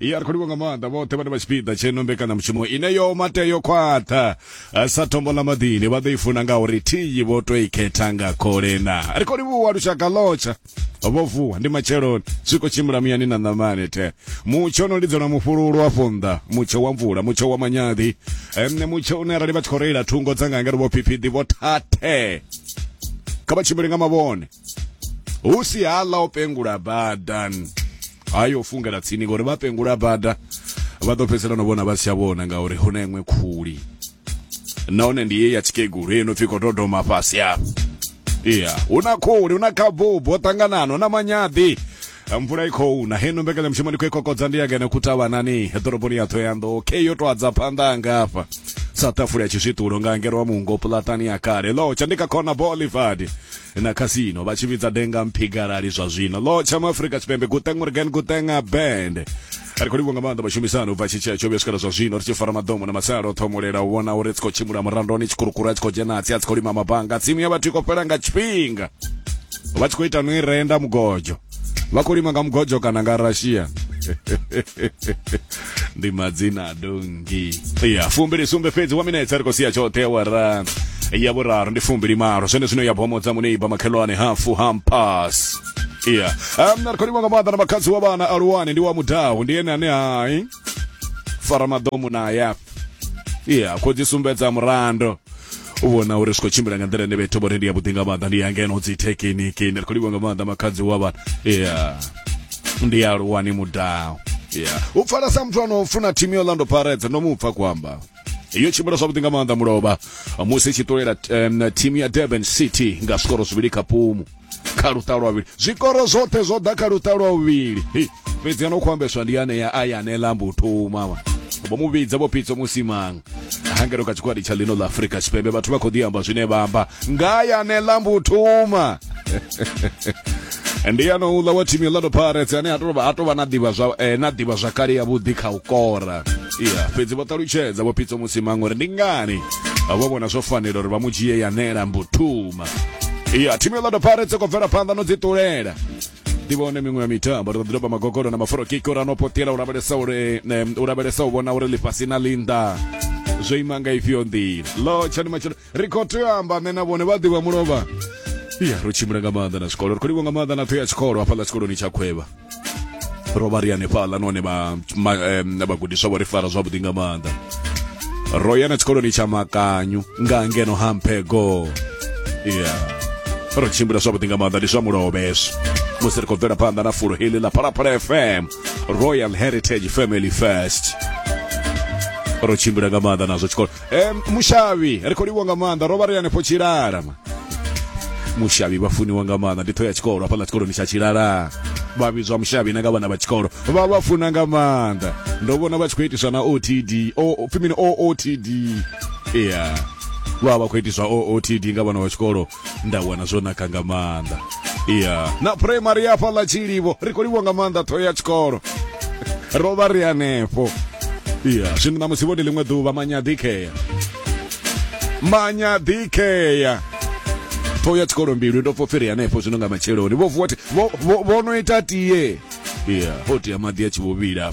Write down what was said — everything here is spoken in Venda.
ya ri khou livha nga maanḓa vhoṱhe vhane vha tshipiḓa tsheno mbekanyamushumo ine yo mate yo khwaṱha sa tombo ḽa maḓini vha ḓo i funa nga uri thiyi vho to i khetha nga kholena ri khou livhuwa lushaka lotsha vho vuwa ndi matsheloni zwi khou tshimbila muyani na ṋamani the mutsho no lidzelwa mufhululu wa fonḓa mutsho wa mvula mutsho wa manyaḓi ene mutsho une arali vha tshi khou reila thungo dza nga ngari vho phiphidi vho thathe kha vha tshimbile nga mavhone hu si hala o pengula badani hayo fungela tsini ngori vha pengula bada vha ḓo fhedzisela no vhona vha si tsha vhona ngauri hu na iṅwe khuli nahone ndi ye ya tshikegulu ye no pfi khou dodoma fhasi afho iya hu na khuli hu na khabubu ho ṱanganana hu na manyaḓi mvula i khou na heno mbekanyamushumo ndi khou i kokodza ndi ya ngeno kutavhanani ḓoroboni ya thoyando ke yo to adza phanḓa anga afha sa tafula ya tshizwiṱulo nga ngero wa mungo pulatani ya kale lotsha ndi kha khona bolivard na casino vha tshi vhidza denga mphigalali zwa zwino lo tsha mu afrika tshipembe guteng morgan guteng band ri khou livhuwa nga maanḓa vhashumisani ubva tshitshea tsho vhuya swikela zwa zwino ri tshi fara maḓomo na masalo ṱhomolela u vhona uri tsi khou tshimbula murandoni tshikurukuru a tshi khou dzhena tsi a tsi khou lima mabanga tsimu ya vhathu i khou fhela nga tshifhinga vha tshi khou ita no i renda mugodzho vha khou lima nga mugodzho kana nga russia ndi madzina dongi ya fumbili sumbe fhedzi wa minetse ri khou sia tshoṱhe ya wara ya vhuraru ndi fumbili malo zwene zwino ya bomodza muneiba makhelwane hafu hampas ya um, na ri khou lima nga maḓa na makhadzi wa vhana aluwani ndi wa mudahu ndi ene ane hai fara maḓomu na ya ya khou dzi sumbedza murando u vhona uri zwi khou tshimbila nga nḓila ine vhethu vho ri ndi yavhuḓi nga maanḓa ndi ya ngeno dzi thekiniki ni ri khou livha nga maanḓa makhadzi wa vhana ya ndi ya luwani mudao ya u pfala sa muthu ano funa thimu ya orlando pirates ndo mu pfa kuamba iyo tshimbila zwavhuḓi nga maanḓa mulovha musi i tshi ṱulela um, thimu ya durban city nga zvikoro zwivhili kha pumu kha luṱa lwa vhuvhili zwikoro zwoṱhe zwo ḓa kha luṱa lwa vhuvhili fhedzi ano khou ambeswa ndi ane ya aya ane lambo u thoma vha vho mu vhidza vho pitso musimanga hangelo kha tshikwadi tsha lino ḽa afurika tshipembe vhathu vha khou ḓi amba zwine vha amba nga ya ane lambo u thoma ndi ano uḽa wa thimu ya lado pirates ane a tou vha a tou vha na ḓivha zwa eh, na ḓivha zwakale ya vhuḓi kha u kora iya fhedzi vho ṱalutshedza vho pitso musimanga uri ndi ngani vho vhona zwo fanela uri vha mu dzhie ya ane lambo u thoma ya timu ya Orlando Pirates i khou bvela phanḓa no dzi ṱulela ḓivhone miṅwe ya mitambo ri ḓo ḓi doba magogolo na maforo kiko ra no potela u lavhelesa uri em, u lavhelesa u vhona uri ḽifhasi na linda zwo ima nga ifhio nḓila lo tshani matshelo ri khou tea u amba nṋe na vhone vha ḓivha mulovha ya ro tshimbila nga maanḓa na zwikolo ri khou livha nga maanḓa na ṱho ya tshikolo hafhaḽa tshikoloni tsha khwevha ro vha ri hanefhaḽa nahone vhagudiswa vho ri fara zwavhuḓi nga maanḓa ro ya na tshikoloni tsha makanyu nga ngeno ha mphego ya ro tshimbila zwavhuḓi nga maanḓa ndi zwa mulovheswa musi ri khou bvela phanḓa na fulo heḽi ḽa phalaphala fm royal heritage family first ro tshimbila nga maanḓa nazwo tshikolo e, mushavhi ri khou livhwa nga maanḓa ro vha ri hanefho tshilala ma mushavhi vha funiwa nga maanḓa ndi ṱho ya tshikolo hafhaḽa tshikoloni tsha tshilala vha vhidzwa mushavhi na nga vhana vha tshikolo vha vha funa nga maanḓa ndo vhona vha tshi khou itiswa na otd o pfi mini ootd ya vha vha khou itiswa ootd nga vhana vha tshikolo nda wana zwo naka nga maanḓa iya na primary ya fhaḽa tshilivho ri khou livhwa nga maanḓa ṱhoho ya tshikolo ro vha ri hanefho iya zwino na musi vhone ḽiṅwe ḓuvha manyadikea manyadikea ṱhoho ya tshikolo mbilu ndo pfopfi ri hanefho zwino nga matsheloni vho vuwa vho no ita tie iya ho tea maḓi a tshi vho vhila